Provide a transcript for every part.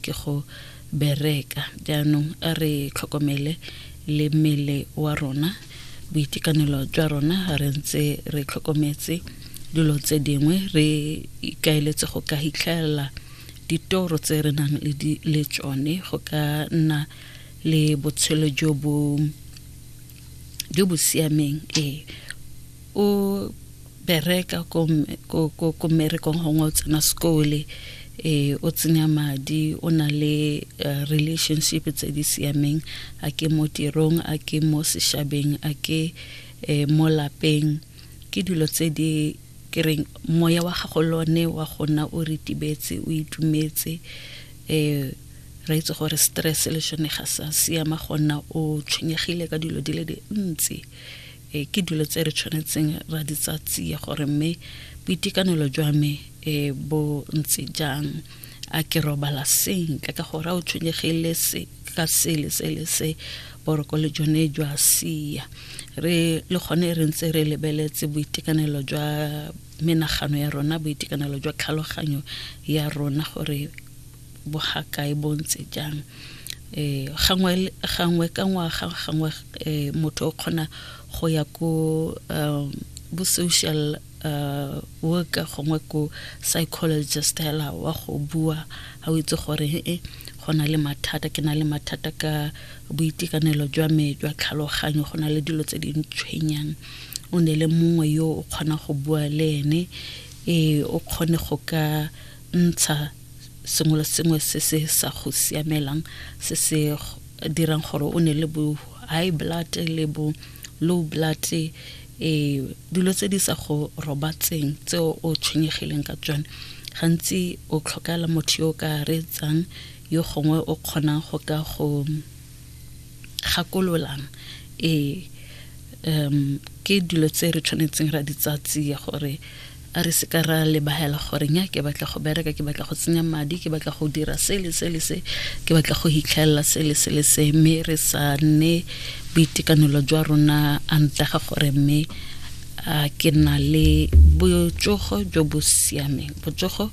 Ke go bereka. Jaanong a re tlhokomele le mmele wa rona, boitekanelo jwa rona re ntse re tlhokometse dilo tse dingwe, re ikaeletse go ka hitlhelela ditoro tse re nang le tsone go ka nna le botshelo jo bo siameng. Ee, o bereka ko ko ko merekong gongwe o tsena sekole eh o tsenya madi o na le eh, relationship tse di siameng a ke mo tirong a ke mo seshabeng a ke eh, mo lapeng ke dilo tse di kereng moya wa gago lone wa gona o ritibetse o itumetse eh re itse gore stress le shone ga sa siama gona o tshwenyegile ka dilo di le dintsi e ke dilo tse re tshwanetseng ra di tsa tsia gore mme boitekanelo jwa me e bo ntse jang a ke robala sentle ka gore a o tshwenyegile se ka sele se le se boroko le jone jwa sia re le gone re ntse re lebeletse boitekanelo jwa menagano ya rona boitekanelo jwa tlhaloganyo ya rona gore bogakae bo ntse jang eh gangwe gangwe ka ngwaga gangwe eh motho o kgona go ya ko um bo social uh, worker gongwe ko psychologist hela wa go bua ga o itse gore e eh, go na le mathata ke na le mathata ka boitekanelo jwa me jwa tlhaloganyo go na le dilo tse di ntshwenyang o ne le mongwe yo o kgona go bua le ene e o kgone go ka ntsha sengwe le sengwe se se sa go siamelang se se dirang gore o ne le bo high blood le bo low blood eh dilo tse di sa go robatseng tse o tshwenyegileng ka tsone gantsi o tlhokela motho yo o ka reetsang yo gongwe o kgonang go ka go gakololang e um ke dilo tse re tshwanetseng ra di tsatsia gore a re se ka ra lebagela gore nya ke batla go bereka ke batla go tsenya madi ke batla go dira se le se le se ke batla go hitlhelela se le se le se mme re sa nne boitekanelo jwa rona a ntega gore mme a ke na le botsogo jo bo siameng botsogo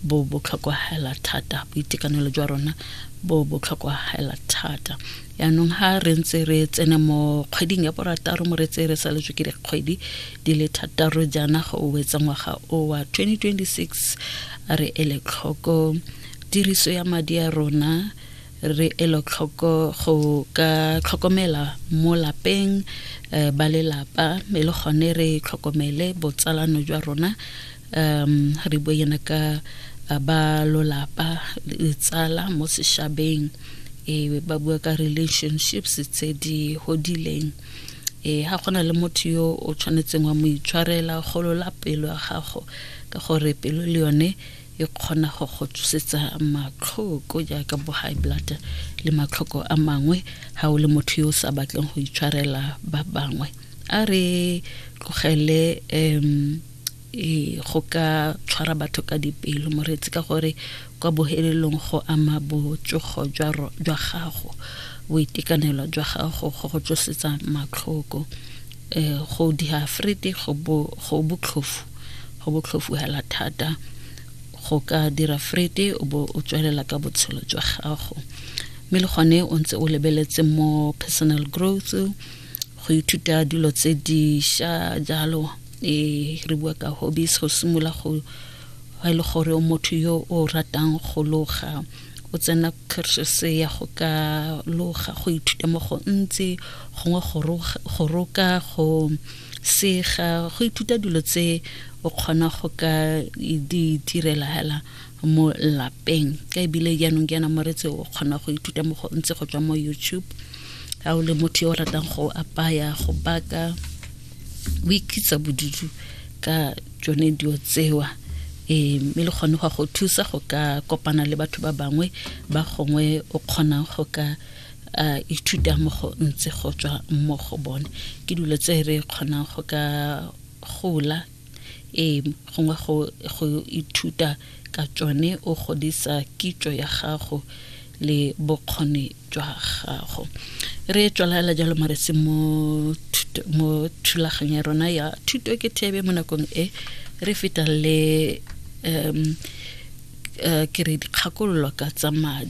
bo botlhokwa hela thata boitekanelo jwa rona bo bo tlhokagala thata yaanong ha re ntse re tsene mo kgweding ya borataro mo re tse re saletswe ke dikgwedi di le thataro jaana go wetsa ngwaga o wa 2026 a re ele tlhoko tiriso ya madi a rona re elo tlhoko go ka tlhokomela mo lapeng eh, ba lelapa mme le gone re tlhokomele botsalano jwa rona um re bue yana ka uh, ba lolapa tsala mo seshabeng e ba bua ka relationships tse di godileng e ha gona le motho yo o tshwanetseng wa mo itshwarela golola pelo ya gago ka gore pelo le yone e kgona go go tsosetsa matlhoko jaaka bo high blood le matlhoko a mangwe ha o le motho yo o sa batleng go itshwarela ba bangwe a re tlogele um e go ka tshwara batho ka dipelo moreetsi ka gore kwa bohelelong go ama botsogo jwa gago boitekanelo jwa gago go go tlosetsa matlhoko um go diafrete go botlhofu go botlhofu hela thata go ka dira frete o bo o tswelela ka botshelo jwa gago mme le gone o ntse o lebeletse mo personal growth go ithuta dilo tse diša jalo e re bua ka hobbies go simolola go ga e le gore o motho yo o ratang go loga o tsena cursus ya go ka loga go ithuta mo go ntse gongwe go roka go sega go ithuta dilo tse o kgona go ka di direla hela mo lapeng ka ebile jaanong jaana moretsi o kgona go ithuta mo go ntse go tswa mo youtube ga o le motho yo o ratang go apaya go baka o ikitsa bodutu ka tsone dio tsewa e mme le gone go go thusa go ka kopana le batho ba bangwe ba gongwe o kgonang go ka a ithuta mo go ntse go tswa mo go bone ke dilo tse re kgonang go ka gola Ee, gongwe go, go ithuta ka tsone o godisa kitso ya gago le bokgoni jwa gago. Re tswalaela jalo mo re se mo thulaganyo ya rona ya thuto ke thebe mo nakong e re feta le um uh, ke re dikgakololo ka tsa madi